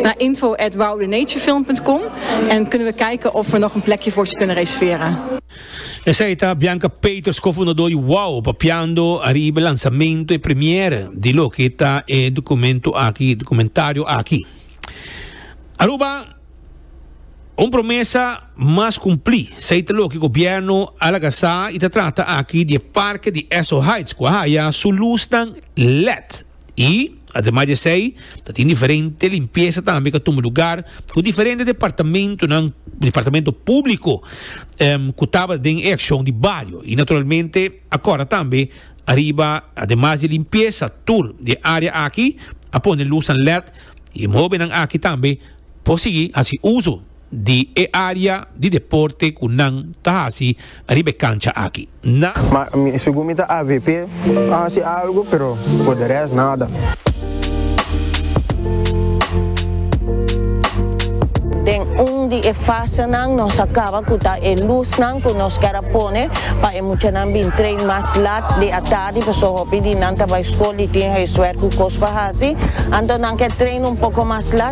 Na info at woudenatureFilm.com en kunnen we kijken of we nog een plekje voor ze kunnen reserveren. Esei ta Bianca Peeters, co-fundador di Wou, papiando ariba e lansamento, e premiere, di loke ta e documento aki, documentario aki. Aruba, un promesa mas cumpli, esei ta loke gobierno a laga sa y ta trata aki di e parke di Esso Heights cu a haya su lusnan led. Y, ademas di esey, ta tin diferente limpiesa tambe cu a tuma lugar cu diferente departamentonan, departamento publico, em, cu taba den e accion di bario. Y naturalmente, acorda tambe ariba, ademas di limpiesa tur di e area aki, a pone lusnan led y e mohobenan aki tambe por sigui haci uso. di e área di deporte ku nan ta hasi riba e kancha aki. Na. Ma mi, segun mi ta avp a hasi algu, pero por de rest nada. Den un di e fasenan nos a kaba ku ta e lusnan ku nos kèr a pone pa e muchanan bin train mas lat di atardi pasobra hopi di nan ta bai skol i tin huiswèrk ku kos pa hasi, anto nan kèr train un poko mas lat.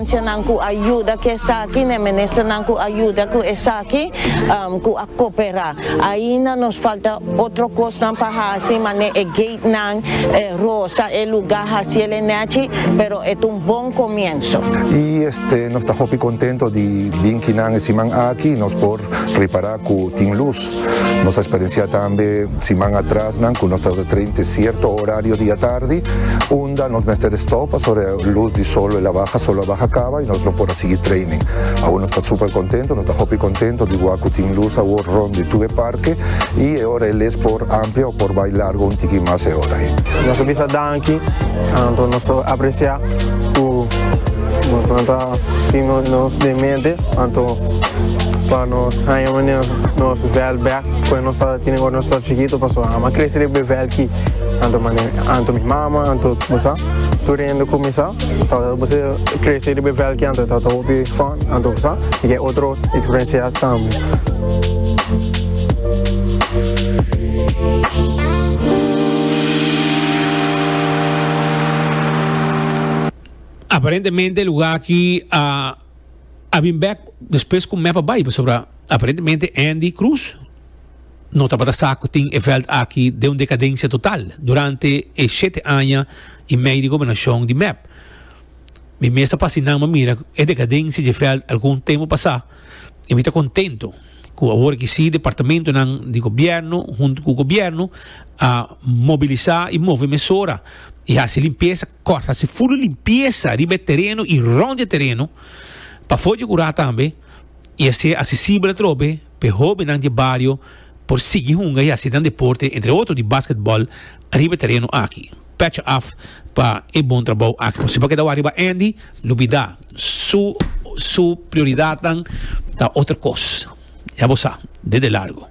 Ancianan cu a yuda cu esaki, n'e ministernan cu a yuda cu esaki, cu a coopera. Ainda nos falta otro cosnan pa haci, manera e gatenan, e rosa, e lugar haciel e nechi, pero e ta un bon comienzo. Y este nos ta hopi contento di bin kinan e siman aki nos por ripara cu tin luz. Nos a experiencia tambe siman atrasnan cu nos ta tabata train te cierto horario di atardi unda nos mester a stop pasobra e luz di sol el a baha, sol a baha caba y nos no por a sigui training. Awor nos ta super contento, nos ta hopi contento di wak cu tin luz awor rond di tur e parke y e ora e les por amplia o por bay largo un tiki mas e ora ey. Nos a bisa danki anto nos ta aprecia cu nos nan ta tin nos den mente anto pa nos haya manera nos vèl bèk koe nos tabata tene ora nos tabata chikito pasobra nan a krese riba e vèl ki anto mane anto mi mama anto bo sa tur hende ku mi sa tabata bo ser krese riba e vèl ki anto tabata hopi fun anto bo sa i ke otro eksperensia tambe. Aparentemente e luga aki a. a bin bek despues ku Meppa bai pasobra aparentemente Andy Cruz no tabata sa ku tin e vèlt aki den un dekadensia total durante e shete aña i mei di gobernashon di Mep. Mi mester pa asin'an bo mira e dekadensia dje vèlt algun tempu pasá i mi ta kontentu ku awor aki sí departamentunan di gobièrnu huntu ku gobièrnu a mobilisá i move mesora i hasi limpiesa Kòrta hasi ful limpiesa riba e tereno i rònt e tereno pa for dje kurá tambe i hasié asesibel atrobe pa e hóbennan di e bario por sigui hunga i hasi nan deporte, entre otro di basketbòl riba e tereno aki. Pècha af pa e bon trabou aki. Nos tin pa keda wak riba Andy, no bida su su prioridatnan ta otro kos. Ya bo sa, de de largo.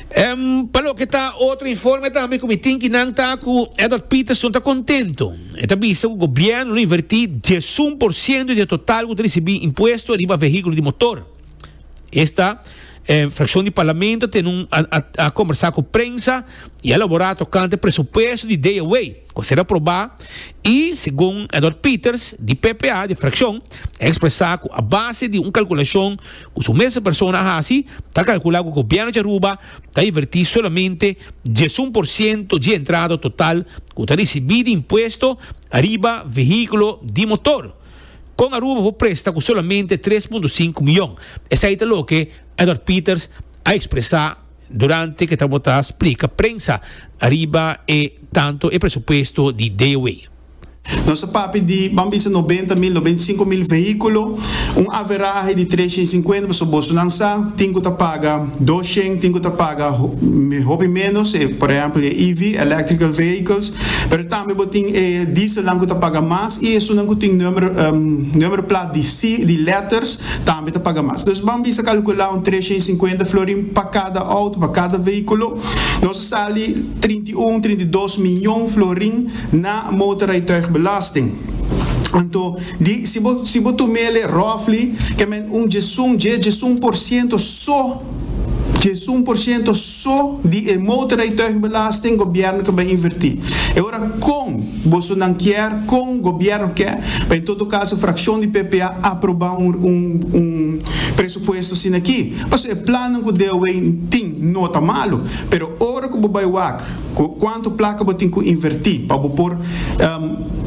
Em, pa loke ta otro informe tambe ku mi tin ki nan ta ku Edward Peterson ta kontento. E ta bisa ku gobièrnu lo invertí diesun por siento di e total ku ta risibí impuesto riba vehíkulo di motor. Esta e frakshon di parlamento a tene un a kombersá ku prensa i a elaborá tokante presupuesto di dea wei. Cu sera proba y, segun Edward Peters di ppa di fraccion, a expresa cu a base di un calculacion cu su mes persona a haci, ta calcula cu Gobierno di Aruba ta inverti solamente diesun por ciento dje entrada total cu ta ricibi di impuesto ariba vehiculo di motor. Con Aruba por presta cu solamente tres punto cinco miyon, esai ta loke Edward Peters a expresa. Durante ke ta bo ta splika prensa riba e tanto e presupuesto di DOE. Nos a papia di, ban bisa noventa mil, noventa i sinku mil vehíkulo, un averahe di tres shen sinkuenta, pasobra bosonan sa tin ku ta paga dos shen, tin ku ta paga hopi ménos, e por ehèmpel e EV, Electrical Vehicles, pero tambe bo tin e dieselnan ku ta paga mas i esunnan ku tin nùmero nùmero plat di si di lèters Tambe ta paga mas. Nos ban bisa calcula un tresha i cincuenta florin pa cada auto, pa cada vehiculo. Nos a sali trinta i un, trinta i dos miyon florin na motorrijtuigbelasting. Anto, di, si bo, si bo tumele roughly, ke men un djesun, djes, djesun por ciento so, Djesun por ciento so di e motorrijtuigbelasting gobierno ke bai inverti. E ora kon boso nan kier, kon gobierno ke, bai todo caso fraccion di ppa aproba un presupuesto sinaki. Paso e plannan ku DOW tin no ta malo, pero ora ku bo bai wak, Cu cuanto placa bo tin cu inverti pa bo por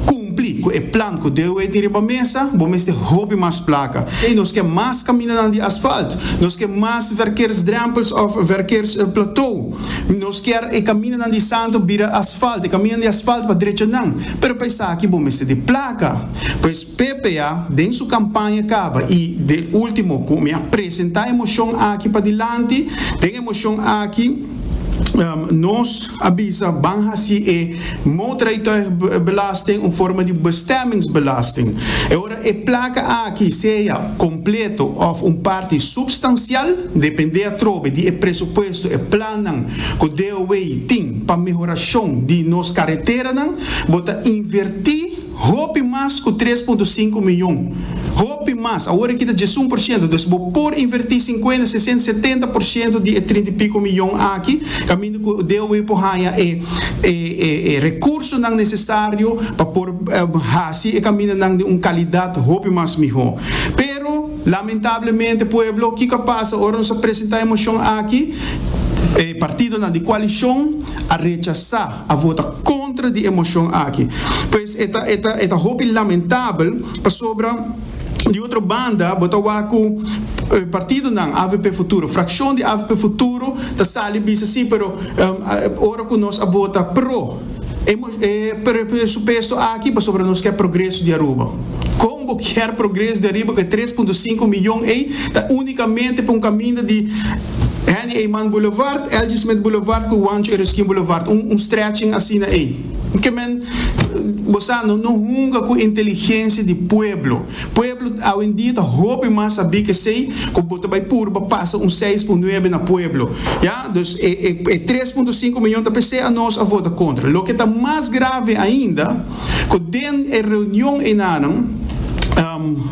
cumpli cu e plan cu DOE tin riba mesa? Bo mester hopi mas placa. Ey, nos ke mas caminanan di asfalt. Nos ke mas verkeersdrempels of verkeersplateau. Nos kier e caminanan di santo bira asfalt, e caminanan di asfalt pa drechanan. Pero pa esaki bo mester di placa. Pues PPA den su campaña caba y den ultimo cu mi a presenta e mocion aki padilanti, den e mocion aki, Nos a bisa ban hasi e motorrijtuigbelasting un forma di bestemmingsbelasting. E ora e plaka aki sea kompleto òf un parti supstansial, dependé atrobe di e presupuesto, e plannan ku DOW tin pa mehorashon di nos kareteranan, bo ta invertí, Hopi mas ku tres punto sinku mion. Hopi mas. Awor e kita djes un por shento. Dus bo por invertí sinkuenta, sesenta, setenta por shento di e trinta i piko mion aki kaminda ku DOW por haña e rekursonan nesesario pa por hasi e kamindanan den un kalidat hopi mas mihó. Pero, lamentablemente, pueblo, kiko a pasa ora nos a presentá e moshon aki? E partidonan di kualishon a rechasá. a vota contra di e mocion aki. Pues e ta e ta e ta hopi lamentabel pasobra di otro banda bo ta wak cu e partidonan avp futuro, fraccion di avp futuro ta sali bisa si pero ora cu nos a vota pro e presupuesto aki pasobra nos ke progreso di Aruba. Kon bo kier progreso den riba ku e tres punto sinku mion ei ta unikamente pa un kaminda di Henny Eyman Boulevard, Elgin Smith Boulevard ku Juancho Ereskine Boulevard, un un stretching asina ei? Ke men bo sa no no hunga ku inteligensia di pueblo. Pueblo awendia ta hopi mas sabí ku esei ku bo ta bai purba pasa un seis por nuebe na pueblo, ya. Dus e e tres punto sinku mion ta p'esei a nos a vota kontra. Loke ta mas grave ainda. cu den e reunion enanan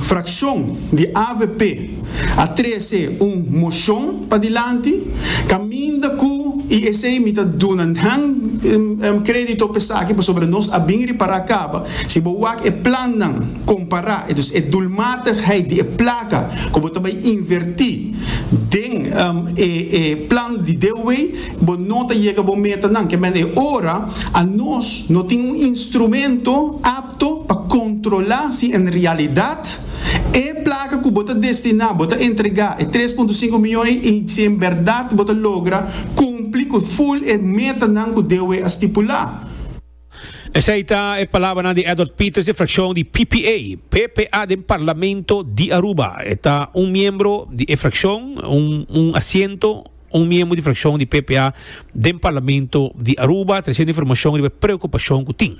fraccion di avp a trece un mocion padilanti caminda cu y esey mi ta duna nan credito pe esaki pasobra nos a bin repara caba si bo wak e plannan compara entonces e doelmatigheid di e placa cu bo ta bay inverti den e plan di DeWe. Bo no ta yega bo metanan. Kèmen e ora anos no tin un instrumento apto pa kontrolá si en realidat e plaka ku bo ta destiná, bo ta entregá e tres punto sinku mion ei i si en bèrdat bo ta logra kumpli ku ful e metanan ku DOE a stipulá. Esei ta e palabranan di Edward Peters di frakshon di ppa, ppa den Parlamento di Aruba. E ta un miembro di e frakshon, un asiento. Un miembro di frakshon di PPA den Parlamento di Aruba trese un informashon riba e preokupashon ku tin.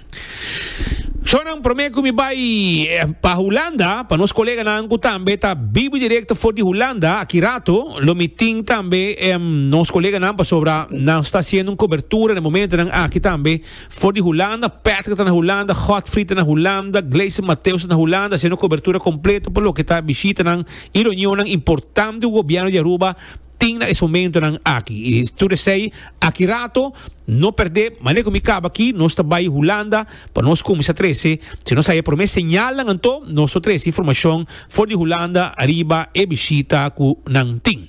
Shonnan, promé ku mi bai pa Hulanda, pa nos koleganan ku tambe ta biba direkto for di Hulanda, aki rato lo mi tin tambe nos koleganan pasobra nan sta hasiendo un kobertura na momentonan aki tambe for di Hulanda. Patrick ta na Hulanda, Godfrey ta na Hulanda, Gleison Mateus ta na Hulanda hasiendo kobertura kompleto pa loke ta bishitanan i reunionnan importante ku gobièrnu di Aruba. Tin na es momentonan aki i tur esei aki rato no perdé manera ku mi kaba aki nos ta bai Hulanda pa nos kuminsá trese si nos haya promé señalnan anto nos lo trese informashon for di Hulanda ariba e bishita ku nan tin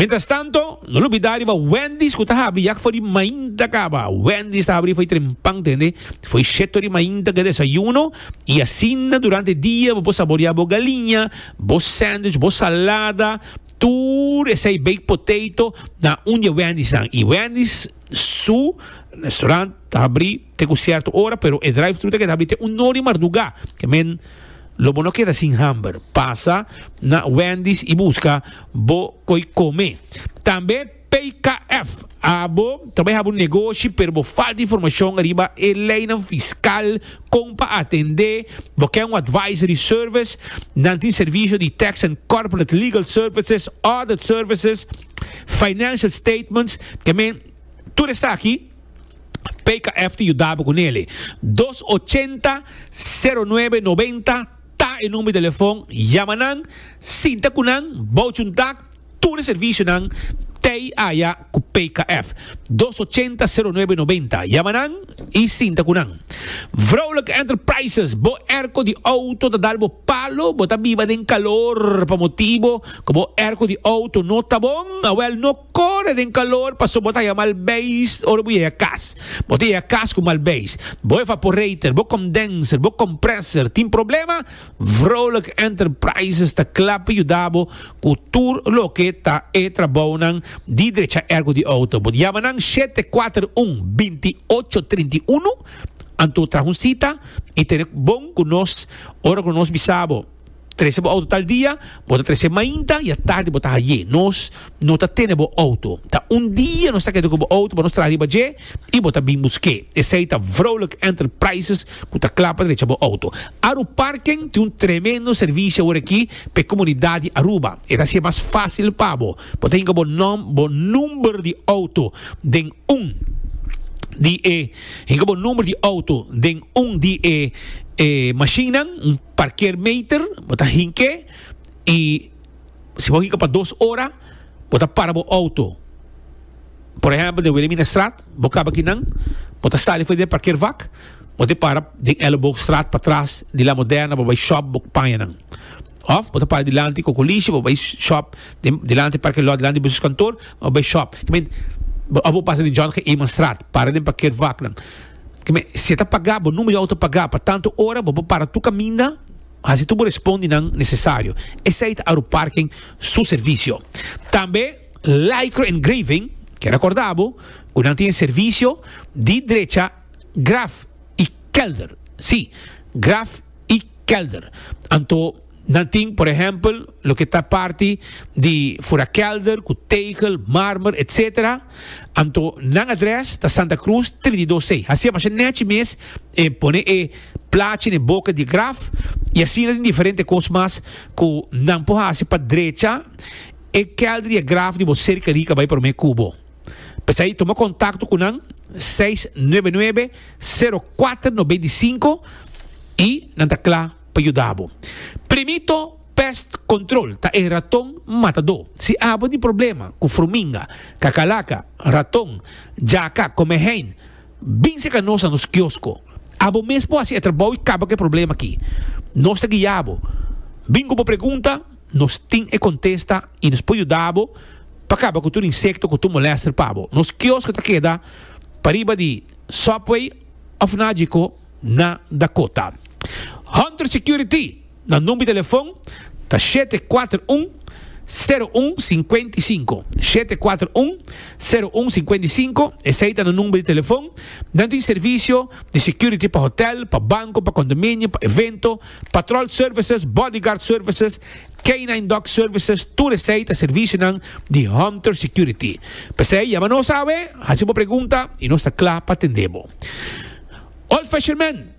mientrastanto no lo bida riba Wendy's ku ta habri ya fo'i mainta kaba Wendy's ta habri fo'i trempan tende fo'i sheto di mainta ku e desayuno i asina durante e dia bo por saboriá bo galiña bo sandwich bo salada Tur esei baked potato na un di e Wendy's nan y Wendy's su restaurant ta habri te cu cierto ora pero e drive thru ta keda habri te un no di marduga. Ke men lo bo no keda sin hamber pasa na Wendy's y busca bo koy come. Tambe. PKF, Abo ta bai haba un negoshi pero bo falta informashon riba e leinan fiskal kon pa atendé. Bo ke un advisory service? Nan tin servisio di tax and corporate legal services, audit services, financial statements, ke men tur esaki PKF ta yuda bo ku nele. Dos ochenta, sero nuebe noventa ta e number di telefon. Yama nan, sinta ku nan, bou chuntak. Tur e servisionan t'ei aya ku PKF, dos ochenta, sero nuebe noventa. Yama nan i sinta ku nan. Vrouwelijke Enterprises, bo airco di auto ta dal bo palo, bo ta biba den calor pa motibo ku bo airco di auto no ta bon? Awel no kore den calor paso bo ta haya mal beis ora bo yega kas. Bo ta yega kas ku mal beis. Bo evaporator, bo condenser, bo compressor tin problema? Vrolijk Enterprises ta kla pa yuda bo ku tur loke ta e trabounan di drecha ergo di outo. Bo yama nan shete kuater un, binti ocho trinta i unu anto traha un sita i tene bon ku nos ora ku nos bisa bo trese bo outo tal dia, bo ta trese mainta i atardi bo ta haye nos. no ta tene bo auto. Ta un dia nos ta keda ku bo auto pa nos traha riba dje i bo ta bin busk'é. Esei ta Vrolijk Enterprises ku ta kla pa drecha bo auto. Aru Parken tin un tremendo servisio aworakí p'e komunidat di Aruba. E ta hasi e mas fásil pa bo. Bo ta hinka bo nòm, bo number di auto den un di e hinka bo number di auto den un di e e mashinnan, un parkeermeter. Bo ta hink'é i Si bo hika pa dos ora, bo ta para bo outo. Por ehèmpel den Wilhelminastraat, bo kaba aki nan, bo ta sali for di e parkeervak, bo te para den Elleboogstraat patras di La Moderna, bo bai shòp, bo paña nan. Òf bo ta para dilanti Kokolishi, bo bai shòp den dilanti parkeerlòt, dilanti di buseskantoor, bo bai shòp. Ke ment, òf bo pasa den John G. Eemanstraat, para den parkeervak nan. Ke men, si e ta pagá, bo number di outo pagá pa tantu ora, bo por para tur kaminda. Hasi tur bo respondinan nesesario. Esei ta Aruparken su servisio. Tambe Lycra en Greven ke rekorda bo ku nan tin e servisio di drecha Graf i Kelder. Sí, Graf i Kelder. Anto nan tin, por ehèmpel, loke ta parti di Furakelder ku Tegel, Marmer, etc. Anto nan adrès ta Santa Krus trididosei. Hasi a masha nèchi mes e pone e Plachi na e boka di graf i asina den diferente kos mas ku nan por hasi pa drecha e kèlder di e graf di bo serka rica bai promé kubo. P'esei tuma kontakto ku nan seis nuebe nuebe sero kuater no beinti sinku i nan ta kla pa yuda bo. Primito Pest Control ta e raton matadó. Si abo tin problema ku fruminga, kakalaca, raton, jaca, kome hein, Bin seka nos na nos kiosko. Abo mes por hasi e trabou i kaba ku e problema aki. Nos ta guia bo. Bin ku bo pregunta, nos tin e kontesta i nos por yuda bo pa kaba ku tur insekto ku tur molèster pa bo. Nos kiosko ta keda pariba di Subway òf naji ko na Dakota. Hunter Security. Nan number di telefon ta shete kuater un, sero un, sinkuenta i sinku. Shete kuater un, sero un, sinkuenta i sinku. Esei ta nan number di telefon. Nan tin servisio di security pa hotel, pa banko, pa kondominio, pa evento, patrol services, bodyguard services, canine dog services, tur esei ta servisionan di Hunter Security. P'esei yama nos awe, hasi bo pregunta i nos ta kla pa tende bo. Old Fashion Man.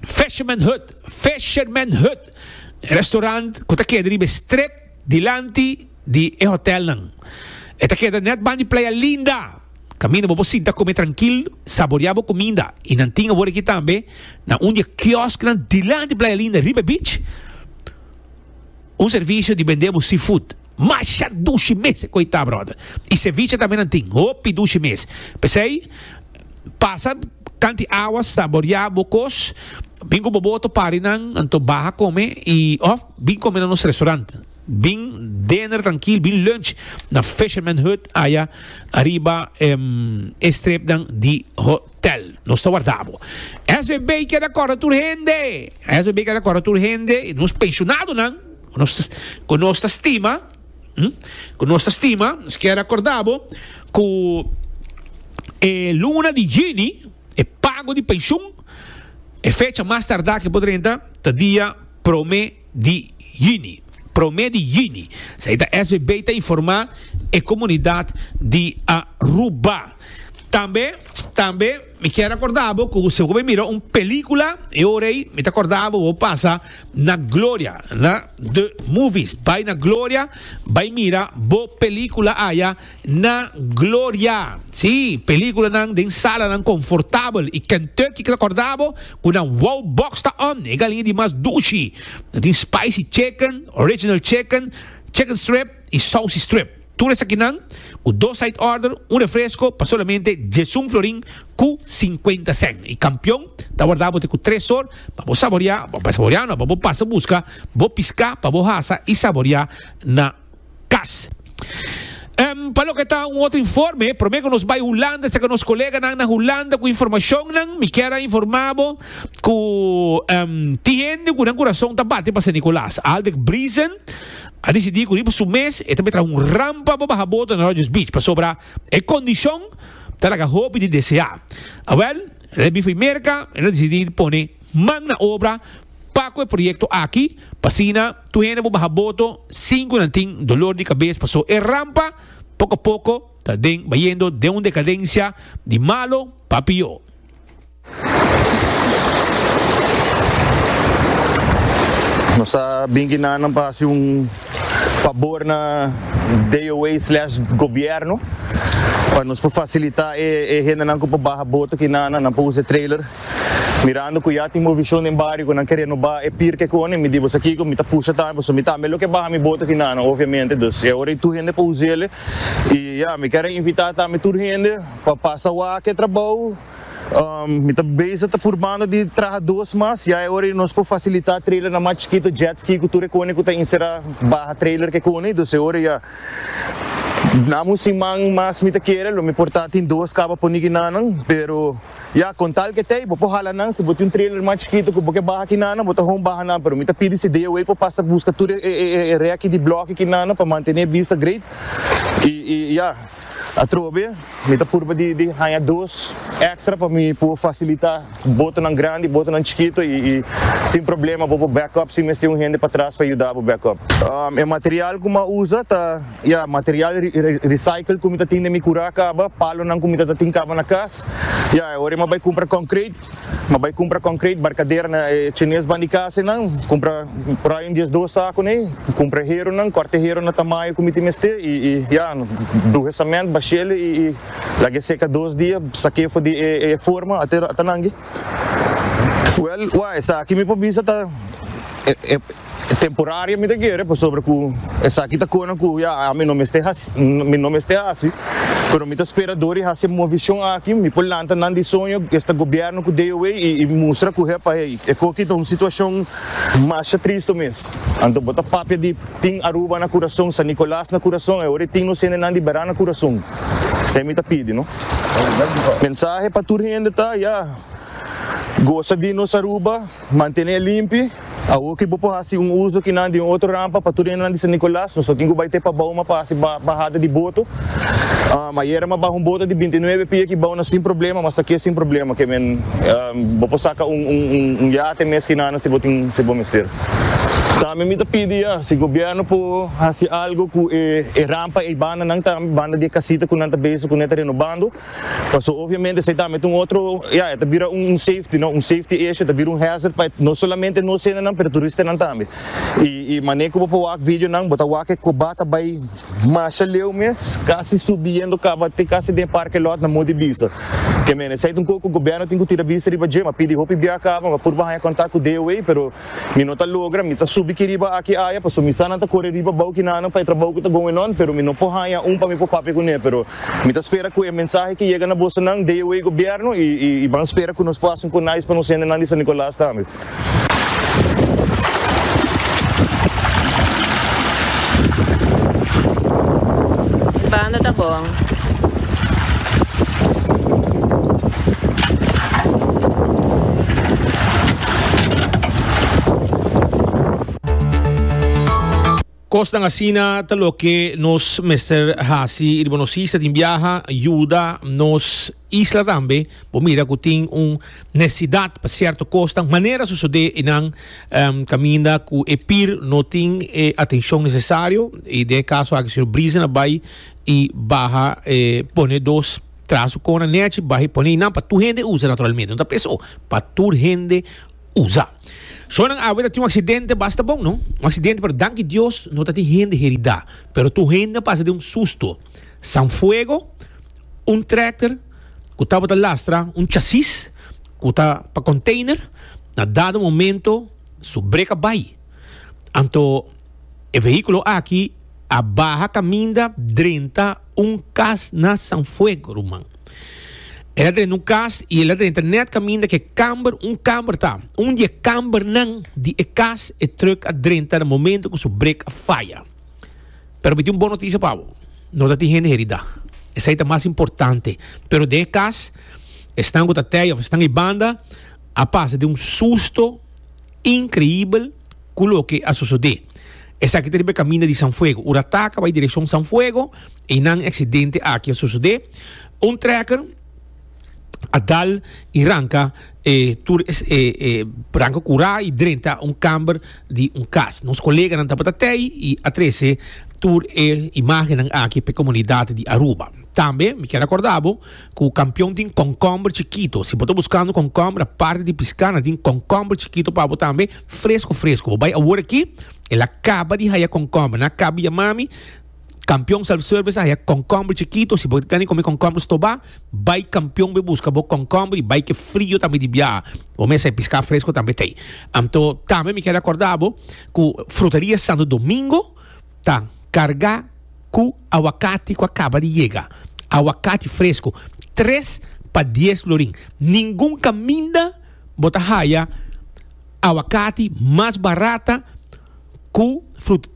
Fisherman Hut, Fisherman Hut, e restaurant ku ta keda riba e strip dilanti di e hotelnan. E ta keda nèt ban di Playa Linda. Kaminda bo por sinta kome trankil, saboreá bo kuminda. I nan tin awor aki tambe na un di e kiosknan dilanti Playa Linda, riba e beach. Un servicio di bende bo seafood. Masha dushi mes cu e ta brother. Y ceviche tambenan tin. Hopi dushi mes. P'esey pasa tanti awa saboria bo cos. Bin cu bo boto parinan anto baha come y of bin come na nos restaurant. Bin dinner trankil bin lunch na Fisherman Hut aya ariba e stripnan di ho. Tel, nos ta warda bo. SVB keda kòrda tur hende. SVB keda kòrda tur hende, nos penshonadonan, ku nos, ku nos ta stima, hm, ku nos ta stima, nos keda kòrda bo ku e luna di yuni e pago di penshun, e fecha mas tardá ke por drenta ta dia promé. di Juni, prome di Juni, esei ta svb ta informa e comunidad di Aruba. Tambe, tambe mi kier acorda bo cu si bo bai mira un pelicula e ora ei mi ta corda bo bo pasa na Gloria, na The Movies, bai na Gloria bai mira bo pelicula aya. na gloria. Sí, películanan den salanan confortabel y Kentucky ta corda bo cu nan wow box ta on, e galinha di mas dushi. Nan tin spicy chicken, original chicken, chicken strip y saucy strip. Tur esakinan cu dos side order, un refresco pa solamente diesun florin cu cincuenta cent. Y campeon ta warda bo te cu tres sor pa bo saboria, pa saboria no, pa bo pasa busca bo pisca pa bo hasa y saboria na cas. Em, pa loke ta un otro informe, prome cu nos bay Hulanda, seca nos coleganan na Hulanda cu informacionnan, mi kier a informa bo cu em, tin hende cu nan curason ta bate pa Sint-Nicolaas. Aldec Briezen a dicidi cu riba su mes e ta bay traha un rampa pa baha boto na Rogers Beach, pasobra e condicion ta laga hopi di desea. Awel, el a bifa y merca, el a dicidi pone. Man na obra pa cu e proyecto aki, p'asina tur hende bo baha boto, cinco nan tin dolor di cabes paso e rampa poco a poco ta den bayendo den un decadencia di malo pa pior. Nos a bin aki na nan pa haci un fabor na DOA slash gobierno pa nos por facilita e hendenan cu por baha boto aki na nan pa usa e trailer. Mirando cu ya tin movicion den bario cu nan ke renoba e pirke cu honden, mi di boso kico, mi ta pusha tambe boso, mi tambe lo ke baha mi bote finana obviamente, dus e ora di tur hende pa uziele y ya, mi ker a invita tambe tur hende pa pasa wak e trabou, mi ta bezig ta purbando di traha dos mas, ya e ora di nos por facilita trailernan mas chikito, jet ski cu tur e cone cu ta encera baha trailer ke cone, dus e ora ya, nada un siman mas mi ta kere lo mi por ta tin dos caba poni guinanan pero. Ya, con tal que t'ey, bo por hala nan, si bo tin un trailer mas chikito cu bo ke baha aki nana, bo ta hon baha nan, pero mi ta pidi si DOA por pasa busca tur e e reki di bloki aki nana pa mantene e bista great, y y ya, atrobe mi ta purba di di haya dos extra pa mi por facilita botonan grandi y botonan chikito y y sin problema bo por back up sin mester un hende patras pa yuda bo back up. E material cu mi a usa ta. Ya, material recycle ku mi ta tin den mi kura a kaba, palonan ku mi ta ta tin kaba na kas. Ya, e ora mi a bai kumpra konkret, mi a bai kumpra konkret, barkadera na e chines ban di kas einan, kumpra por ai un dies dos sakunan ei, kumpra heronan, kòrta e hero na tamayo ku mi tin mester i i ya, bruha sament, bashel i i lag'e seka dos dia, sak'e for di e forma ata nangi. Wèl, wak, esaki mi por bisa ta e. Temporario mi ta kere pasobra ku esaki ta kona ku ya ami no mester mi no mester hasi, pero mi ta spera dor di hasi e movishon aki mi por lanta nan di soño ku esta gobièrnu ku DOA i mustra ku he pa hei. E ku aki ta un situashon masha tristu mes. Anto bo ta papia di tin Aruba na kurason, San Nicolas na kurason, e ora e tin nos hendenan di Beran na kurason. Esei mi ta pidi no. Mensahe pa tur hende ta, ya, gosa di nos Aruba. Mantené limpi, Awor ki bo por hasi un uso ki nan di un otro rampa pa tur hende nan di San Nicolas, nos lo tin ku bai te pa bou ma pa hasi bahada di boto. Mayera ma baha un boto di binti nuebe pia ki bou nan sin problema, ma sakié sin problema. Ke men, bo por saka un yate mes ki nan si bo tin, si bo mester. Tambe mi ta pidi ya si gobièrnu por hasi algu ku e rampa ei banda nan tambe, banda di e kasita ku nan ta beso ku nan e ta renobando. Paso obviamente esei tambe ta un otro, ya, e ta bira un safety, no, un safety issue, e ta bira un hazard pa no solamente nos hendenan pero turistanan tambe. Y y mane cu bo por wak videonan bo ta wak e coba ta bay masha leu mes, casi subiendo caba te casi den e parking lot na mor di bisa. Kemene, esei ta un cosa cu gobierno tin cu tira bista riba dje, m'a pidi hopi biaha caba, m'a purba haya contact cu DOA pero. Mi no ta logra, mi ta subi ki riba aki aya paso mi sa nan ta kore riba bou ki nanan pa e trabou ku ta going on, pero mi no por haña un pa mi por papia kuné, pero mi ta spera ku e mensahe ki yega na bosonan dei wei gobièrnu i i ban spera ku nos por haci un konais pa nos hendenan di San Nicolas tambe. Banda ta bon. Kosnan asina ta loke nos mester hasi riba nos isla tin biaha, yuda nos isla tambe. Bo mira ku tin un nesidat pa sierto kosnan. Manera sosodé einan em, kaminda ku e pir no tin e atenshon nesesario. I den e kaso aki señor Brisen a bai i baha e pone dos Traha su kona nechi, baha i pone i nan pa tur hende usa naturalmente. No ta p'es o pa tur hende usa. Shonnan awe ta tin un aksidente basta bon, no? Un aksidente, pero danki Dios no ta tin hende heridá. Pero tur hende a pasa den un susto. Sanfuego, un trèkter ku tabata lastra un chasis ku ta pa konteiner, na dado momento su breka bai. Anto E vehiculo aki a baha caminda drenta un cas na San Fuego ruman. El a drenta un cas y el a drenta net caminda ke camber, un camber ta. Un di e cambernan di e cas e truck a drenta na momento cu su break a faya. Pero mi tin un bon noticia pa bo, no ta tin hende herida. Esai ta mas importante. Pero den e cas esnan cu ta tey of esnan ey banda a pasa den un susto increibel. Cu loke a sosode. Esaki ta riba e caminda di San Fuego. Ura taca bay direccion San Fuego, eynan e accidente aki a sosode. Un trekker a dal y ranca e tur e e ranca cura y drenta un camber di un cas. Nos coleganan tabata tey y a trece tur e imagennan aki p'e comunidad di Aruba. Tambe mi kier a corda bo cu Kampion tin concomber chikito. Si bo ta buscando concomber, aparte di pisca, nan tin concomber chikito pa bo tambe. Fresco fresco, bo bai awor aki, el a caba di haya concombre. Na caba ya mami, Campeon Self Service a haya concombre chikito, si bo ta gana come concombre stoba, bai Campeon bo e busca bo concombre y bai cu e frio tambe di biaha. Bo mester pisca fresco tambe ta ey. Anto tambe mi quier recorda bo cu Fruteria Santo Domingo ta carga cu aguacate cu a caba di yega. Aguacate fresco, tres pa dies lorin. Ningun caminda. Bo ta haya awakati mas barata ku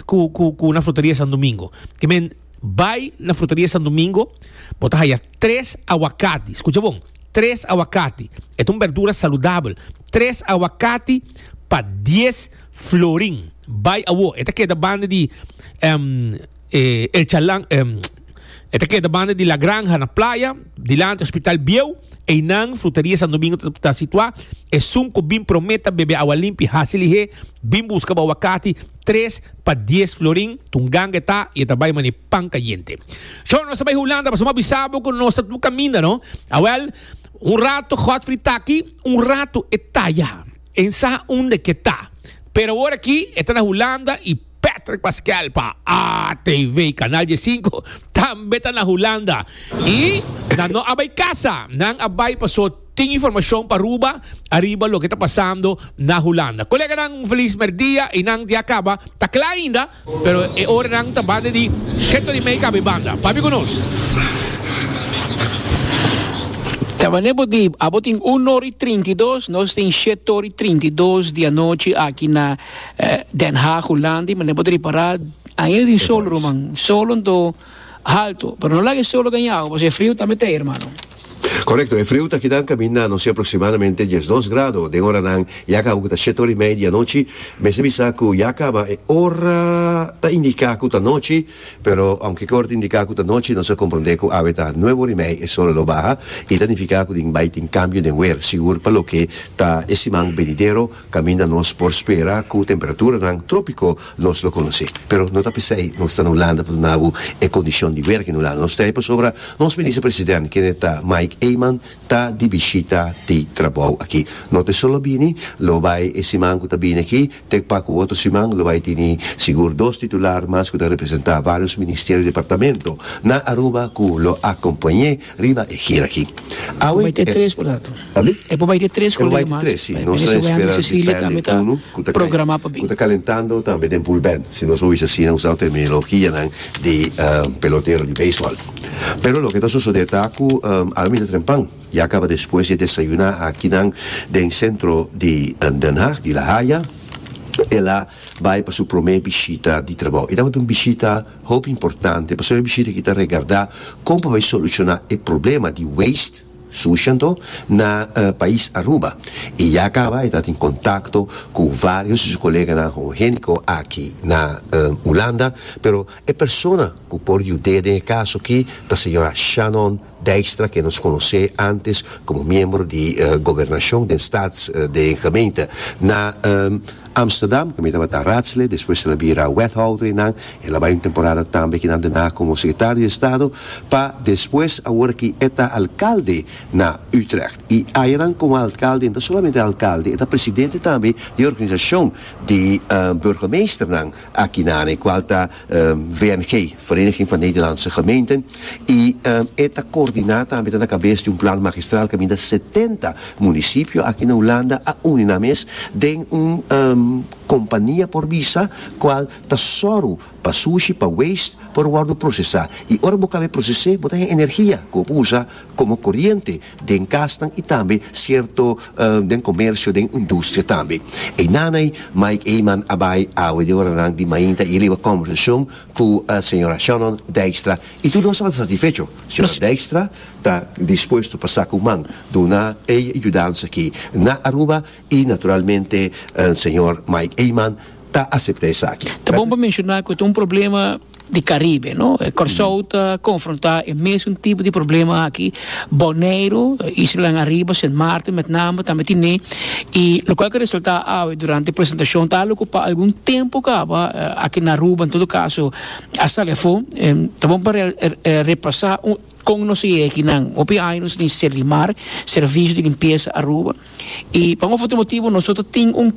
ku na Frutaria Santo Domingo. Ke men, bai na Frutaria Santo Domingo, bo ta haya tres awakati, skucha bon, tres awakati, e ta un berdura saludabel, tres awakati pa dies florin. Bai awo, e ta keda banda di El Chalan. E ta keda banda di La Granja na playa, dilanti Hospital Bieu. Einan, Fruteria Santo Domingo ta situá. Esun ku bin promé ta bebe awa limpi hasi lihé, bin buska bo awakati tres pa dies florin. Tunganga e ta i e ta bai manera pan kayente. Shon, nos ta bai Hulanda pasobra bo a bisa bo ku nos ta tur kaminda, no? Awèl, un ratu Godfrey ta aki, un ratu e ta ya. E sabi unda ke ta. Pero awor aki e ta na Hulanda i. Patrick Pascal pa ATV Canal die sinku tambe ta na Hulanda y nan no a bay casa nan a bay paso tin informacion pa Aruba ariba loke ta pasando na Hulanda coleganan un feliz merdia y nan dia caba ta cla ainda pero e ora nan ta bande di Sheto di Mei cabe banda papi cu nos. Tabane bo di abo tin uno ori trinta y dos nos tin shetoori trinta y dos di anochi aki na. Den Haag, Hulanda, i mane bo ta ripará ainda tin solo, ruman. Solonan ta haltu, pero no laga e solo gaña awa, pasobra e friu tambe ta ei, hermano. Korekto, e friu ta kidá kaminda nos e aproksimadamente diesdos grado. Den oranan ya kaba ku ta shet ora i mei di anochi, mester bisa ku ya kaba e ora ta indiká ku ta nochi, pero ounke e ora ta indiká ku ta nochi nos a komprondé ku awe ta nuebe ora i mei e sol a lo baha i ta nifiká ku tin bai tin kambio den wer, sigur pa loke ta e siman benidero. Kaminda nos por spera ku temperaturanan trópiko nos lo konosé. Pero no ta p'esei nos ta na Hulanda pa duna bo e kondishon di werk in Hulanda. Nos ta ei pasobra nos minister president, kende ta Mike Eman, ta di bishita di trabou aki. No ta solo bini, lo bai e siman ku ta bini aki, te pa ku otro siman lo bai tini sigur dos titular mas ku ta representá vários ministerio i departamento na Aruba ku lo akompañ'é riba e gira aki. Awe e. Tambe e por bai te tres colega mas pa e mene Sewea ni Cecilia tambe ta programa pa bin. Calentando tambe den bulbèn si nos a wis asina usando terminologianan di pelotero di beisbòl pero loke ta sosodé ta ku al mi ta trempan ya kaba despues di desayuná akinan den sentro di Den Haag di La Haya el a bai pa su promé bishita di trabou i tabata un bishita hopi importante pasobra e bishita aki ta regardá kon pa bai solushoná e problema di waste Sucianto na pais Aruba y ya caba e ta tin contacto cu varios di su coleganan homogenico aki na Hulanda, pero e persona cu por yud'é den e caso aki ta señora Shannon Dijkstra ke nos conocé antes como miembro di Gobernacion den Staats den Gemeente na Amsterdam, cu mi tabata Raadslid, despues el a bira Wethouder y nan, el a bay un temporada tambe kinan den ha como Secretario di Estado, pa despues awor ki e ta Alcalde na Utrecht. Y ayanan como Alcalde e no ta solamente Alcalde, e ta Presidente tambe di e organisacion di Burgemeesternan, Aki na Haarlem cual ta VNG, Vereniging van Nederlandse Gemeenten, y e ta coordina tambe, ta na cabes di un plan magistral caminda setenta municipio aki na Hulanda a uni nan mes den un compania por bisa cual ta zorgo pa sushi, pa waste por wordo procesa y ora bo caba e procese bo ta hen energia cu bo por usa como coriente. den kasnan i tambe sierto den komersio den industria tambe. Einan ei Mike Eman a bai awe den oranan di mainta i riba kòmbersashon ku señora Shannon Dijkstra i tur nos tabata satisfecho. Señora Dijkstra ta dispuesto pa sa ku man duna e yudansa aki na Aruba i naturalmente señor Mike Eman ta asepta esaki. Ta bon pa menshona ku ta un problema di Karibe, no? Kòrsou ta konfrontá e mesun tipo di problema aki. Boneiru, islanan ariba, Sint Maarten met name tambe tine. I lokal ke resaltá awe durante e presentashon ta alo ku pa algun tempu kaba aki na Aruba, en todo kaso, a sali afó. Ta bon pa repasá kon nos e yèkinan. Hopi aña nos tin Selimar, Servicio di Limpieza Aruba. Y pa un of otro motibo nosotros tin un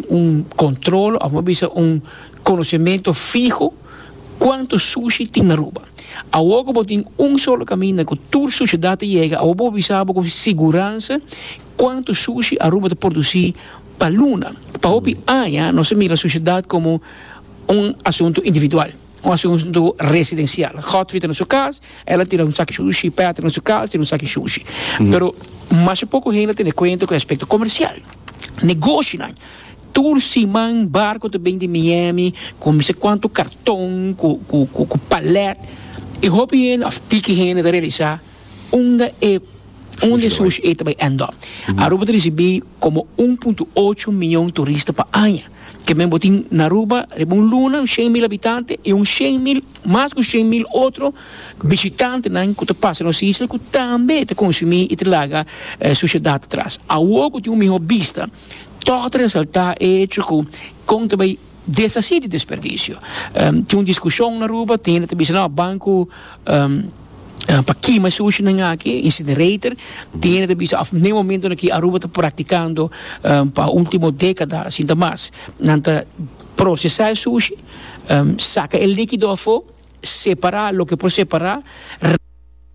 un control of bisa un conocimiento fiho cuanto sushi tin na Aruba. Awor cu bo tin un solo caminda cu tur suciedad ta yega awor bo bisa bo con siguranza cuanto sushi Aruba ta produci pa luna. Pa hopi aña nos a mira suciedad como un asunto individual. Un asuntu residencial. Godfrey ta na su cas, el a tira un saki sushi, Patrick na su cas tira un saki sushi. Pero masha poco hende ta tene cuenta cu e aspecto comercial. Negoshinan, tur siman barco ta bini di Miami cu mi sa cuanto carton, cu palet, y hopi hende of piki hende ta realisa. Unda e unda e sushi e ta bai end up. Aruba ta risibi komo un punto ocho mion turista pa aña. Ke men bo tin na Aruba riba un luna, shen mil habitante i un shen mil, mas ku shen mil otro bishitantenan ku ta pasa nos isla ku tambe ta konsumí i ta laga sushi dat atras. Awo ku tin un mihó bista, tòg ta resaltá e hecho ku kon ta bai. Desasí di desperdisio. Tin un diskushon na Aruba, tin hende ta bisa, no, banku pa kima e sushinan aki, incinerator, tin hende ta bisa, òf n'e momentonan aki Aruba ta praktikando pa último dékada asinta mas, nan ta prosesá e sushi, saka e líkido afó, separá loke por separá.